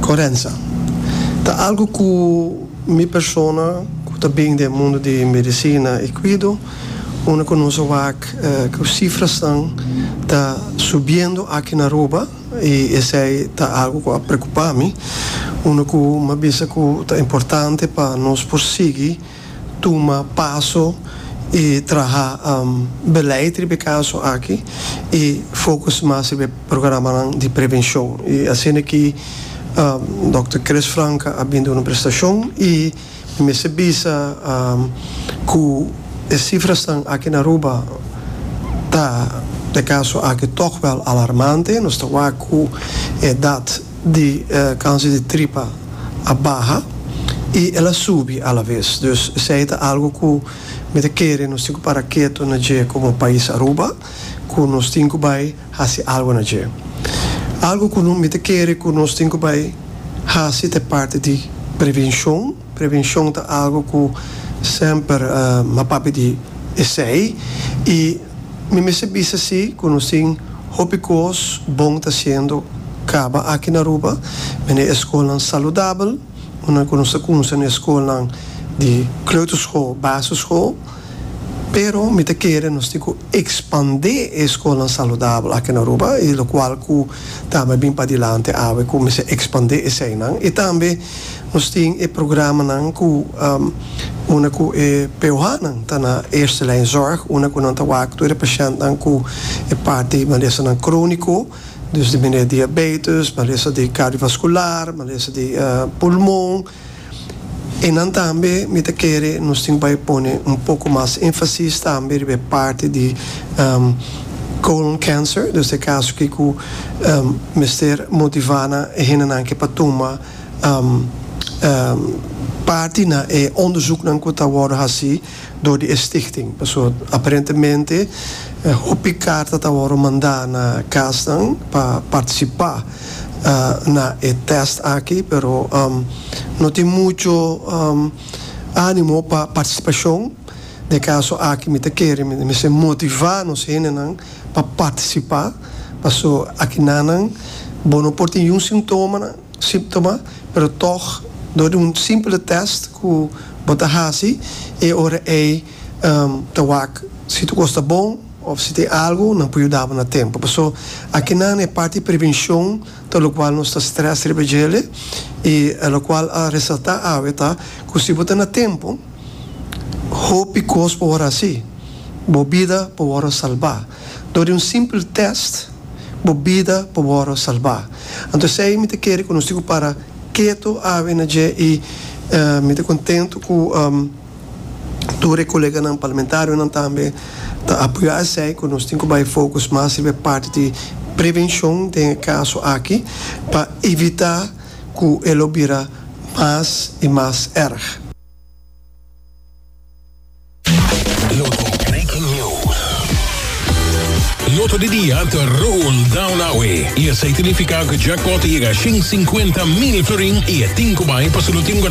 Corenza. Ta algo cu mi persona cu ta bin den mundo di medicina y cuido, unda cu nos a wak cu cifrasnan ta subiendo aki na Aruba y esey ta algo cu a preocupa mi, unda cu mi a bisa cu ta importante pa nos por sigui. tuma paso i traha beleid riba e kaso aki i focus mas riba e programanan di prevenshon. I asina ki Dòkter Chris Franka a bin duna un prestashon i mi mester bisa ku e sifrasnan aki na Aruba ta, e kaso aki, tòg wèl alarmante. Nos ta wak ku e edat di kanser di tripa a baha i el a subi alabes. Dus esei ta algu ku mi ta kere nos tin ku para ketu na dje komo pais Aruba, ku nos tin ku bai hasi algu na dje. Algu ku mi ta kere ku nos tin ku bai hasi ta e parti di prevenshon. Prevenshon ta algu ku semper m'a papia di esei i Mi mester bisa si cu nos tin hopi cos bon ta haciendo caba aki na Aruba. Mende e schoolnan saludabel, un nan cu nos ta cunsa na e schoolnan di kleuterschool, basisschool. Pero mi ta kere nos tin cu expande e schoolnan saludabel aki na Aruba y locual cu tambe a bin padilanti awe cu mester expande eseinan y tambe. Nos tin e programanan ku una ku e POHnan ta na eerste lijn zorg, una ku nan ta wak tur e pashèntnan ku e parti malesanan króniko, dus di manera diabetes, malesa di kardiovaskular, malesa di pulmon. I nan tambe mi ta kere nos tin bai pone un poko mas énfasis tambe riba e parti di colon cancer, dus e kaso ki ku. mester motivá nan e hendenan ke pa tuma parti na e ondesuknan ku ta wòrdu hasi dor di e stichting. Paso aparentemente hopi karta ta wòrdu mandá na kasnan pa partisipá na e tèst aki pero no tin muchu ánimo pa partisipashon. Den e kaso aki mi ta kere mi mester motivá nos hendenan. pa partisipá paso akinanan bo no por tin yu sintomanan símptoma pero tòg dor di un simpele tèst ku bo ta hasi e ora ei ta wak si tu kos ta bon òf si tin algu nan por yuda bo na tempu paso akinan e parti prevenshon ta lokual nos ta strès riba djele i lokual a resaltá awe ta ku si bo ta na tempu Hopi kos por wòrdu hasi. Bo bida por wòrdu salbá. Dor di un simpel tèst, bo bida por wòrdu salbá. Anto esei mi ta kere ku nos tin ku para ketu awe na dje i mi ta kontentu ku tur e koleganan parlamentarionan tambe ta apoyá esei ku nos tin ku bai fokus mas riba e parti di prevenshon den e kaso aki pa evitá. ku e lo bira mas i mas erg. Loto Breaking News. Loto di dia ta roll down awe i esei ta nifiká ku jackpot ta yega shin sinkuenta mil florin i e tin ku bai pa su lutim.